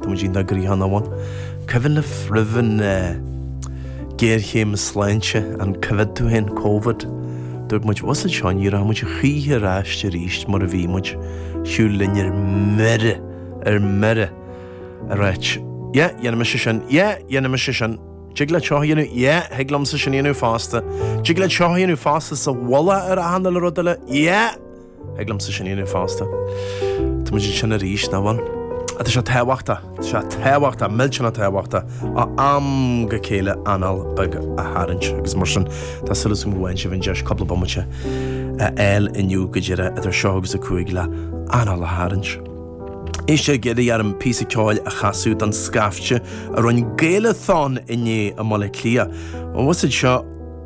Tá muid inár gcríochán amháin. Cuimhin libh roimh an ghéarchéim sláinte, an Covid, tú féin, covid, dúirt muid, abhus anseo, ní rachaidh muid choíche ar ais arís mar a bhí muid, siúl linn ar mire, ar mire, ar áit. Yeah, dhéanfaidh mise sin, yeah, dhéanfaidh mise sin, dtig leat seo a dhéanamh, yeah, thig liomsa sin a dhéanamh fosta, dtig leat seo a dhéanamh fosta sa mhullach ar achan rud eile, yeah! Thig liomsa sin a dhéanamh fosta. Tá muid ansin arís, nach bhfuil? Ach tá sé tábhachtach, tá sé tábhachtach, millteanach tábhachtach, á am go chéile anáil beag a tharraingt agus mar sin tá súil agam go bhfaigheann sibh an deis cúpla bomaite a fháil inniu go deireadh idir seo agus a cúig le anáil a tharraingt. Éist, iarradh orm píosa ceoil a chasadh don scaifte a rinn Gaelathon inné i mBaile Átha Cliath. An bhfuil siad seo?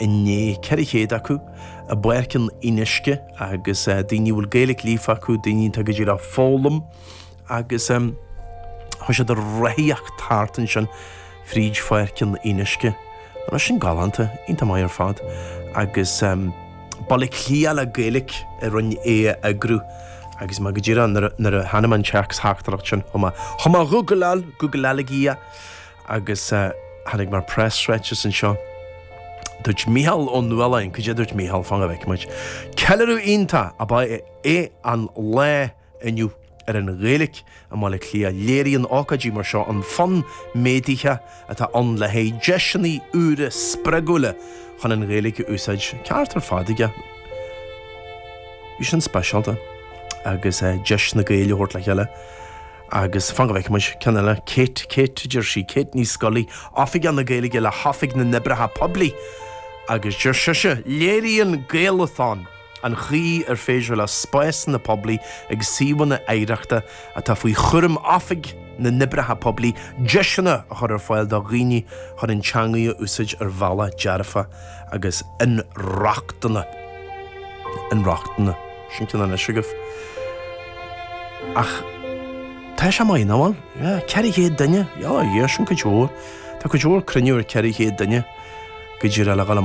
inné 400 acu, i bPáirc an Fhionnuisce, agus daoine a bhfuil Gaeilge líofa acu, daoine atá go díreach ag foghlaim, agus chuaigh siad a rothaíocht thart ansin fríd Pháirc an Fhionnuisce. Nach bhfuil sin galánta, iontach maith ar fad. Agus Baile Átha Cliath le Gaeilge a rinn é a eagrú, agus mé go díreach nuair a tháinig an téacstheachtaireacht sin chomh maith. Chomh maith, ghúgláil, ghúgláil mé é. agus tháinig mé ar preasráiteas anseo. Dúirt Mícheál Ó Nualláin, Goidé a dúirt Mícheál, fan go bhfeicfidh muid. Ceiliúradh iontach ab ea é an lá inniu ar an Ghaeilge i mBaile Átha Cliath. Léiríonn ócáidí mar seo an fonn méadaithe atá ann le haghaidh deiseanna úra spreagúla chun an Ghaeilge a úsáid. Ceart ar fad aige. Bhí sin speisialta agus deis na Gaeil a thabhairt le chéile. Agus fan go bhfeicfidh muid. Ceann eile. Kate, Kate a deir sí, Kate Ní Scolaí, Oifigeach na Gaeilge le hOifig na nOibreacha Poiblí. Agus deir sise, Léiríonn Gaelathon an chaoi ar féidir le spásanna poiblí agus suíomhanna oidhreachta atá faoi chúram Oifig na nOibreacha Poiblí deiseanna a chur ar fáil do dhaoine chun an teanga a úsáid ar bhealach dearfach agus inrochtana. Sin ceann anois agaibh. Ach tá sé maith, nach bhfuil? Á, ceithre chéad duine! Á, a Dhia, sin cuid mhór. Tá cuid mhór cruinnithe cheithre chéad duine. Go díreach le dhul amach?